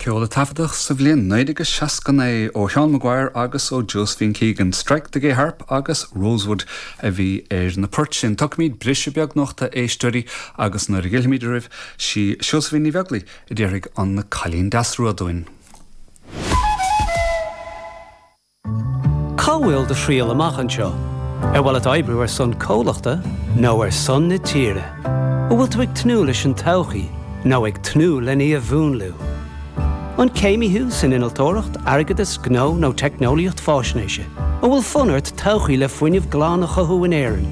Ceol a taifeadadh sa bhliain 1969 ó Sheán Maguire agus ó Josephine Keegan, Strike the Gay Harp agus Rosewood a bhí ar na poirt sin. Tógfaimid briseadh beag anocht, a éisteoirí agus nuair a dh'fhillfimid oraibh, sí Seosaimhín Ní Bheaglaoich a déarfaidh An Cailín Deas Rua dúinn. Cá bhfuil do thriall amach anseo? Ar mhaith leat oibriú ar son comhlachta nó ar son na tíre? An bhfuil tú ag tnúth leis an todhchaí nó ag tnúth len í a mhúnlú? An céimí thú san innealtóireacht, airgeadas, gnó nó teicneolaíocht faisnéise? An bhfuil fonn ort todhchaí le fuinneamh glan a chothú in Éirinn?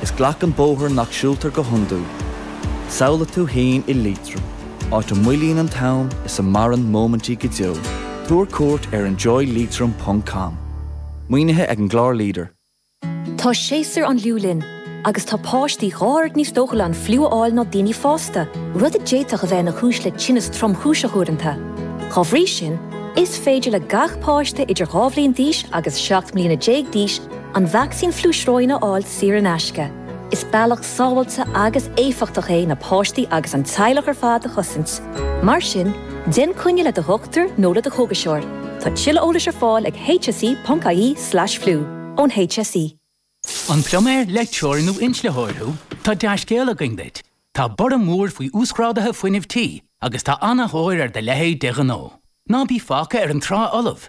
Is glac an bóthar nach siúltar go hiondúil. Samhlaigh tú fhéin i Liatroim, áit a moillíonn an t-am is a maireann móimintí go deo. Tabhair cuairt ar enjoyleitrim ponc com. Maoinithe ag an gclár leader. Tá séasúr an fhliú linn agus tá páistí dhá oiread níos dóchúla an fliú a fháil ná daoine fásta, rud a d'fhéadfadh a bheith ina chúis le tinneas tromchúiseach uaireanta. Dá bhrí sin, is féidir le gach páiste idir dhá bhliain d'aois agus seacht mbliana déag d'aois, An vacsaín fliú sróine a fháil saor in aisce. Is bealach sábháilte agus éifeachtach é na páistí agus an teaghlach ar fad a chosaint. Mar sin, déan coinne le do dhochtúir nó le do chógaiseoir. Tá tuilleadh eolais ar fáil ag hse.ie/fliú, ón HSE. An pluiméir, leictreoir nó inslitheoir thú? Tá dea-scéal againn duit. Tá borradh mór faoi uasghráduithe fuinnimh tí agus tá an-tóir ar do leithéid de ghnó. Ná bí fágtha ar an trá fholamh!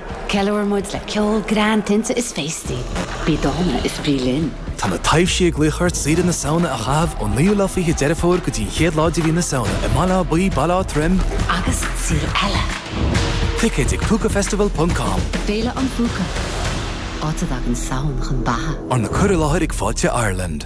Ceiliúraimid le ceol, greann, tinte is féastaí. Bí dána is bí linn! Tá na taibhsí ag glaoch ort saoire na Samhna a chaitheamh ón naoú lá fiche Deireadh Fómhair go dtí an chéad lá de mhí na Samhna i mBaile Átha Buí, Baile Átha Troim, agus sa saol eile! Ticéid ag Púcafestival ponc com. Féile an Phúca, áit a dtagann Samhain chun beatha. Arna cur i láthair ag Fáilte Ireland.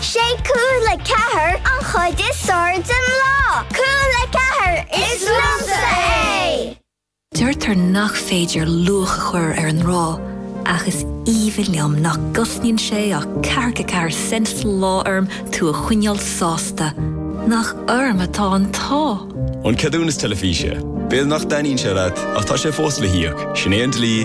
Sé Cúla Ceathair an chuid is fearr den lá. Cúla Ceathair, is liomsa é! Deirtear nach féidir luach a chur ar an ngrá, ach is aoibhinn liom nach gcosnaíonn sé ach ceathracha ceathair cent sa lá orm tú a choinneáil sásta. Nach orm atá an t-ádh! An ceadúnas teilifíse. B'fhéidir nach dtaitníonn sé leat, ach tá sé fós le híoc. Sin é an dlí.